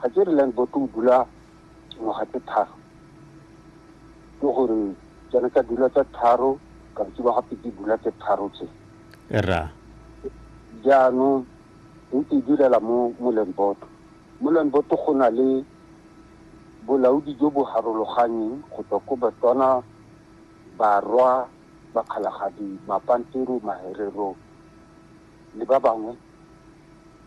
Ga ke re land board o dula ngwaga tse tharo ke gore tsone tsa dula tse tharo kantsi ba gape di dula tse tharo tse ra jaanong ntse e direla mo mo land board mo land board go na le bolaodi jo bo harologanyeng go tswa ko batswana barwa bakgalagadi mapantero maherero le ba bangwe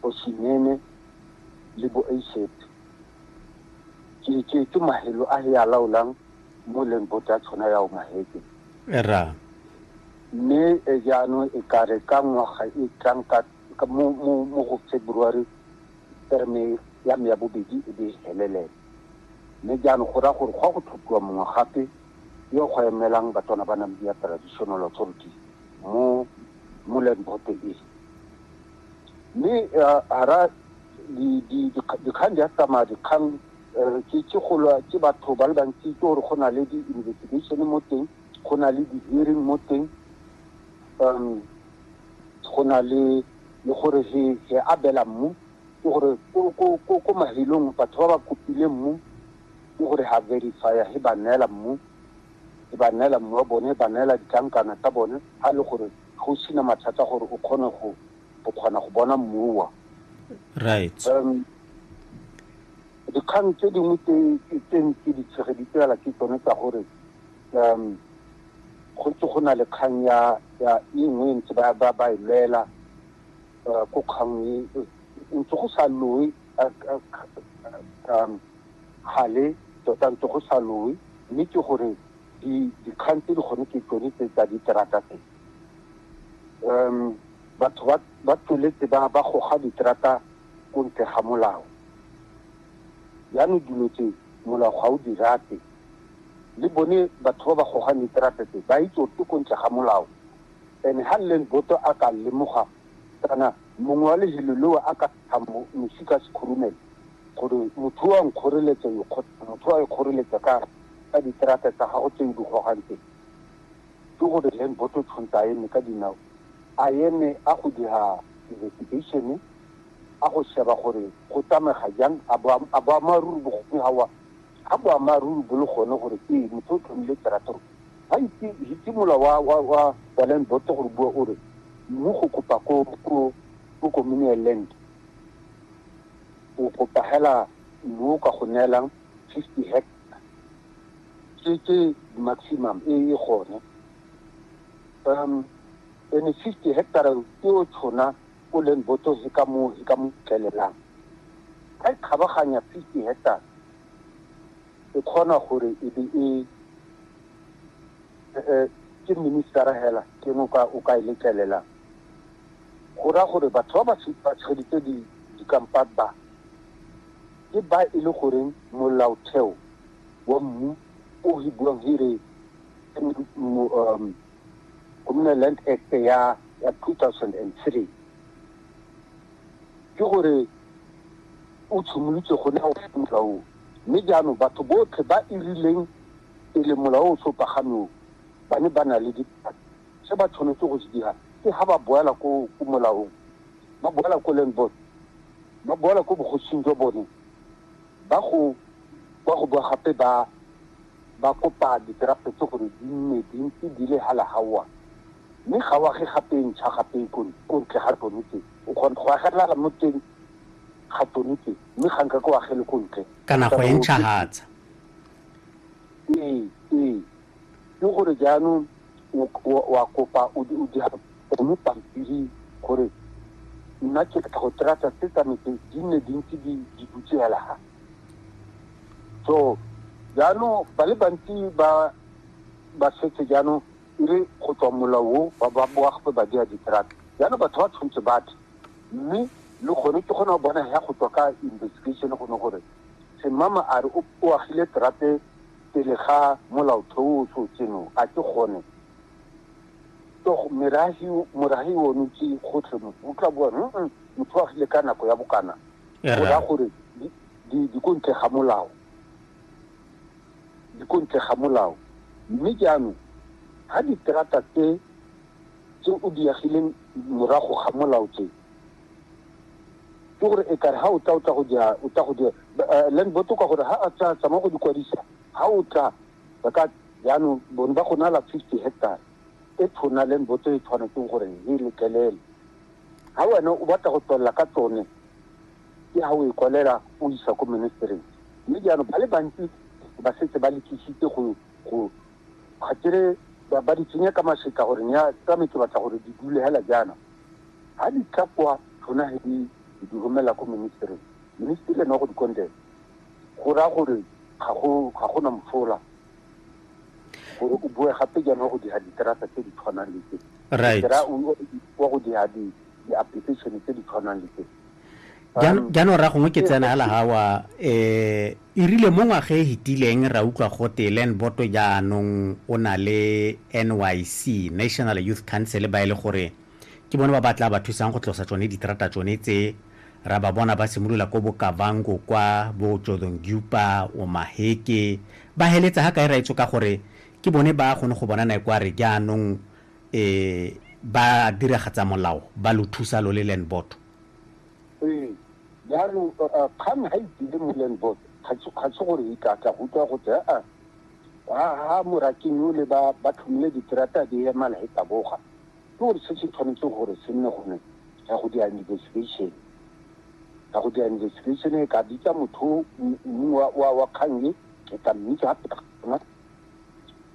Bosinene le Boaiseb. Ke itše ke mahelo a he a laolang mo leng bota tshona ya o maheke. Era. Mme e jaano e kare ka ngwaga e tlang ka mo mo mo go February terme ya me ya bobedi e be e helelela. Mme jaano go ra gore go a go tlhophiwa mongwe gape yo go emelang batona ba Namibia Traditional Authority mo mo land board e mme hara dikgang di a tsamaya dikgang ke ke golo ke batho ba le bantsi ke gore go na le di-investigation mo teng go na le di-hearing mo teng um go na le le gore he he abela mmu ke gore ko ko ko ko mahelong batho ba ba kopileng mmu Ke gore ha verify-a he ba neela mmu, he ba neela mmu wa bone, he ba neela ditlankana tsa bone, ha e le gore ga o sena mathata gore o kgone go kgona go bona mmu wa. Right. Um, dikgang tse dingwe tse ntse di tshegeditse fela ke tsone tsa gore um go ntse go na le kgang ya ya e nngwe ntse ba ba ba e lwela uh, ko kgang e ntse go sa loe gale tota ntse go sa lowe mme ke gore dikgang tse di gone ke tsone tse tsa diterata tse um batho ba tsweletse ba ba goga diterata ko ntle ga molao jaanong dilo tse molao ga o di rate le bone batho ba ba gogang diterata tse ba itse gore ke ko ntle ga molao and ha leng boto a ka lemoga kana Mongwe wa lehelo leo a ka ntsha mosi ka sekhurumelo gore motho o a nkgoreletsa yo kgotsa motho o a ikgoreletsa ka ka diterata tsa gago tse o di gogang teng. Ke gore Len Boto tshwantse a eme ka dinao, a eme a go dira investigation-e, a go sheba gore go tsamega jang, a boammaaruri bo gone ga o a Ga boammaaruri bo le gone gore ee motho o tlhomile terator, ga itse hitse mola wa wa wa wa land board gore bua o re mmu go kopa ko ko ko communal land o kopa hela mmu o ka go neelang 50 hectare ke ke maximum e e gone um ene 50 hectare ke o tshona ko Lenboto he ka moo he ka mo fitlhelelang. Ga e kgabaganya fifty hectares e kgona gore e be e ke ministera hela ke eng o ka e letlelelang go raya gore batho ba ba tsheditse dikampane ba ke ba e le goreng molaotheo wa mmu o re buang he re Communal Land Act ya ya 2003 ke gore o tshimolotse go ne o molaong mme jaanong batho botlhe ba e rileng pele molao o sopagameo ba ne ba na le dipaki se ba tshwanetse go se dira ke ga ba boela ko molaong ba boela ko land board ba boela ko bogosing jwa bone ba go ba go boa gape ba Ba kopa dikerafo tse gore di nne dintsi di le hala hawa, mme ga o age gape ntšha gape ko ntle ga tsone tse. O kgona go agelela mo teng ga tsone tse, mme ga nkake o agele ko ntle. Kana go e ntšhahatsa. Ee, ee. Ke gore jaanong o a kopa o dira gone pampiri gore nna ke batla go tseya tsa se tsa me tse di nne dintsi di dutse hala ha. so jaanong ba le bantsi ba ba setse jaanong e re go tswa molao o ba boagpe ba dira di-truck jaanong batho ba tshwanetse batho mme le gone ke gona bona ya go tswa ka investigation gone gore semama a re o agile terate pele ga molaotheo o so tseno a ke gone meragi one ke gotlhe motho o tla bua motho o agile ka nako ya bokana go raya gore di ko ntle ga molao di ko ntle ga molao mme jaanong ga diterata tse tse o di agileng morago ga molao tse ke gore e kare ga o tla o tla go dira o tla go dira land boto ka gore ga a tla tsamaya go di kwadisa ga o tla ba ka jaanong bone ba go nala fifty hectare e tshwana land boto e tshwanetseng gore e letlelele Ha wena o batla go tswelela ka tsone, ke ha o e kwalela o isa ko Ministereng. Mme jaanong ba le bantsi ba setse ba lekisitse go go ga kere ba ba di tsenya ka masetla gore nya tsa me ke batla gore di dule hela jaana. Ha di tla kwa rona he di di romela ko Ministereng, Ministry ene wa go di kondela go raya gore ga go ga gona mosola. gore o bue gape jaana wa go dira diterata tse di tshwanang le tse right wa go dira di-application tse di tshwanang le tse jaanong ra gongwe ke tsena hela gawa um eh, e rile mo ngwaga e fetileng ra utlwa gote land boto jaanong o na le nyc national youth council ba e le gore Ke bone ba ba tlaa ba thusang go tlosa tsone diterata tsone tse. Ra ba bona ba simolola ko bo Kavango kwa, bo Jodhongyupa, Omaheke, ba heletsa ga kae raetso ka gore ke bone ba gone go bona nae kware jaanong e ba diragatsa molao ba lo thusa lo le land board. Ee, jaanong kgang ga e tsile mo land board ga se gore e ka tla go utlwa go tse aa, ga Moraking o le ba ba tlhomile diterata di ema la e taboga. Ke gore se se tshwanetseng gore se nne gone ya go dira investigation, ya go dira investigation e ka bitsa motho wa kgang e e ka mmitsa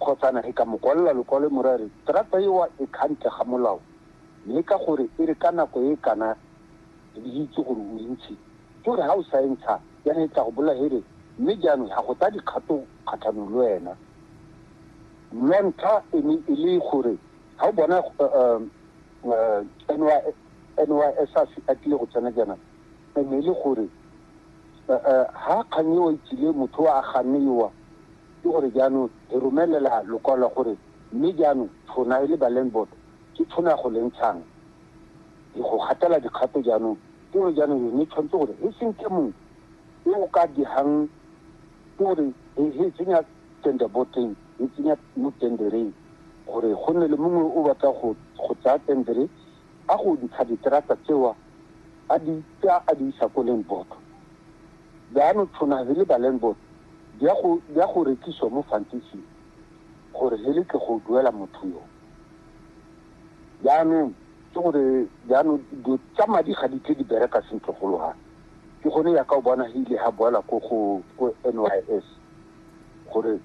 kgotsana e ka mo kwalela lokwalo mo ra re terata ewa e kgantle ga molao mme ka gore e re ka nako e kana le itse gore o ntshi ke gore ga o sa entsha ya ne tla go bola here mme jaanong ga go tsa dikgato kgatlhanong le wena ntlha e ne e le gore ga o bona NYSAS a tlile go tsena jaana e ne e le gore ga kgang eo itsile motho a ganne yowa ke gore jaanong re romelela lokwalo la gore mme jaanong tshona e le ba land board ke tshona go le ntshang go gatela dikgato jaanong ke gore jaanong yone tshwanetse gore e seng ke mongwe e o ka digang ke gore e tsenya tender boteng e tsenya mo tendereng gore go nne le mongwe o batla go go tsaya tendere a go ntsha diterata tsewa a di tsaya a di isa ko land board jaanong tshwana he le ba land board di ya go di ya go rekiswa mo fantising gore he le ke go duela motho yo jaanong ke gore jaanong dilo tsa madi ga di tle di bereka sentle go loga ke gone ya ka o bona he ile ga boela ko go ko n y s gore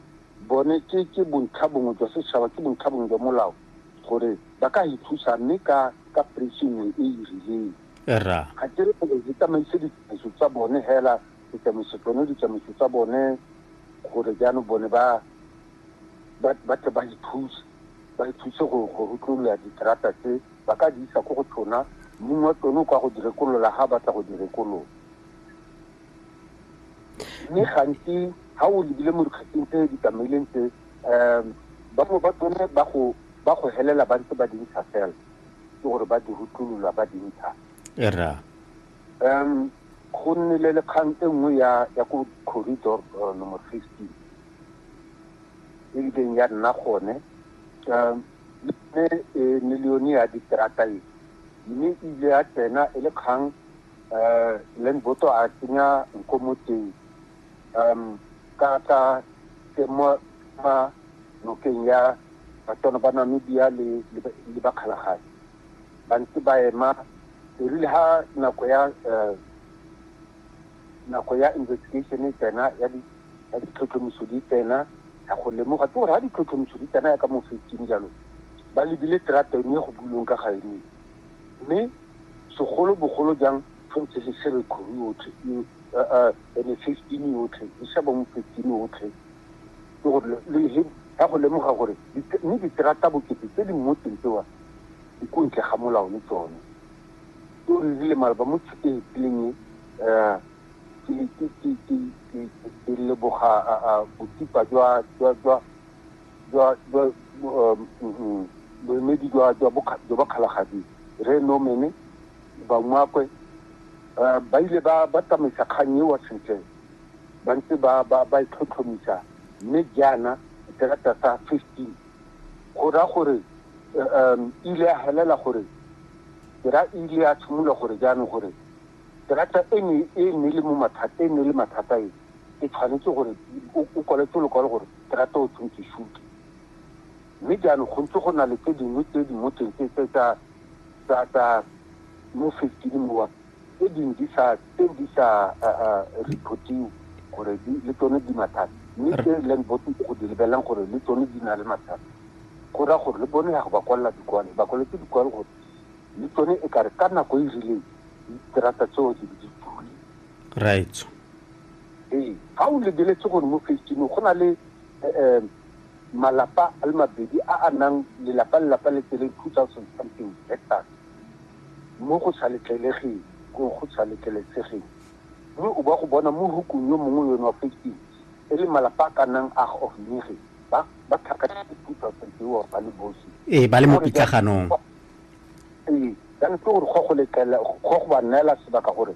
Bone ke, ke bontlha bongwe jwa setšhaba, ke bontlha bongwe jwa molao gore ba ka e thusa mme ka, ka price nngwe e e rileng. Rra. Ga ke re gore re tsamaise ditsamaiso tsa bone hela, re tsamaisa tsone ditsamaiso tsa bone gore jaanong bone ba, ba, ba tle ba e thuse, ba e thuse go, go rutlolola diterata tse, ba ka di isa ko go tsona, mong wa tsone o ka go di rekolola ha a batla go di rekolola. Mme gantsi ha o lebile mo dikgatsing tse di tsamaileng tse, um bangwe ba tsone ba go ba go helela ba ntse ba di ntsha fela ke gore ba di rutlulula ba di ntsha era um go nnile le kgang e nngwe ya ya ko corridor uh, number fifteen e ileng ya nna gone um mme e millione ya diterata e mme e ile ya tsena e le kgang um le nboto a tsenya nko mo teng um ka ka ke mo ma nokeng ya batswana ba namibia le le bakgalagadi ba ntse ba ema erile ha nako ya um nako ya investigation e tsena ya ditlhotlhomiso di tsena ya go lemoga ke gore ha ditlhotlhomiso di tsena ya ka mo fetseng jalo ba lebile terata eno e go bulong ka ga eno Mme segolo bogolo jang fa ntse le sere kgoro yotlhe eo, aa, ene fifteen yotlhe, le sa bangwe fifteen yotlhe, ke gore le he ya go lemoga gore mme diterata bokete tse di mmotseng tsewa di ko ntle ga molao le tsone. Ke gore di le maleba mo tshiteng tseleng e, aa, ke leboga botsipa jwa, jwa, jwa, jwa jwa um, mm, mm, boemedi jwa jwa bokga- jwa bakgalagadi re nomene bangwakwe eh, ba ile ba ba tsamaisa kgang eo sentle ba ntse ba ba ba e tlhotlhomisa mme jaana terata sa 15 go raya gore eh, um, ile ya helela gore ra ile ya tshimolola gore jaanong gore terata e ne e ne le mo mathata e ne le mathata e e tshwanetse gore o- o kwaletse lokwalo gore ke rata o tseng ke shuke. Mme jaanong go ntse go na le tse dingwe tse di mo teng tse tse tsa tsa tsa mo fifteen mowa tse dingwe di sa tse di sa reportiwe gore di le tsone di mathata mme tse e leng botse go di lebelelang gore le tsone di na le mathata go raya gore le bone ya go ba kwalela dikwalo ba kwaletse dikwalo gore le tsone e kare ka nako e rileng diterata tseo di be di tule right Ee, ga o lebeletse gore mo Phase Two-ng go na le malapa a le mabedi a a nang lelapa le lelapa le tsereng two thousand something hectares mo go sa letlelegeng, go sa letlelesegeng. Mme o ba go bona mo hukung yo mongwe yone wa Phase Two e le malapa a ka nnang a of nege ba ba tlhakantse two thousand tseo ba le bosi. Ee, ba le mo pitlaganong. Ee, jaanong ke gore go go letlela go go ba neela sebaka gore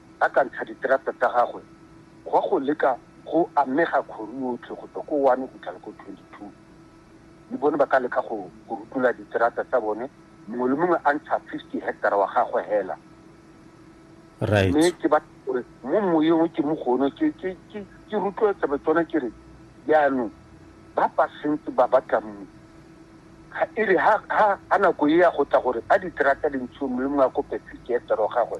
a ka ntsha diterata tsa gagwe gwa go leka go amega kgoru yotlhe go tswa ko 1 go fitlhela ko 22. Le bone ba ka leka go rutula diterata tsa bone mongwe le mongwe a ntsha 50 hectara wa gagwe hela. Right. Mme ke ba gore mo moyeng o ke mo gone ke ke ke ke rutloetsa ba tsone ke re jaanong ba ba sentse ba batla mmu ga e re ha ha ha nako e ya go tla gore a diterata di ntshiwe mongwe le mongwe a kope 50 hectara wa gagwe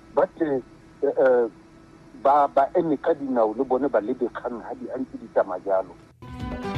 Ba tle ba ba eme ka dinao le bone ba lebe kgang ha di a ntse di tsamaya jalo.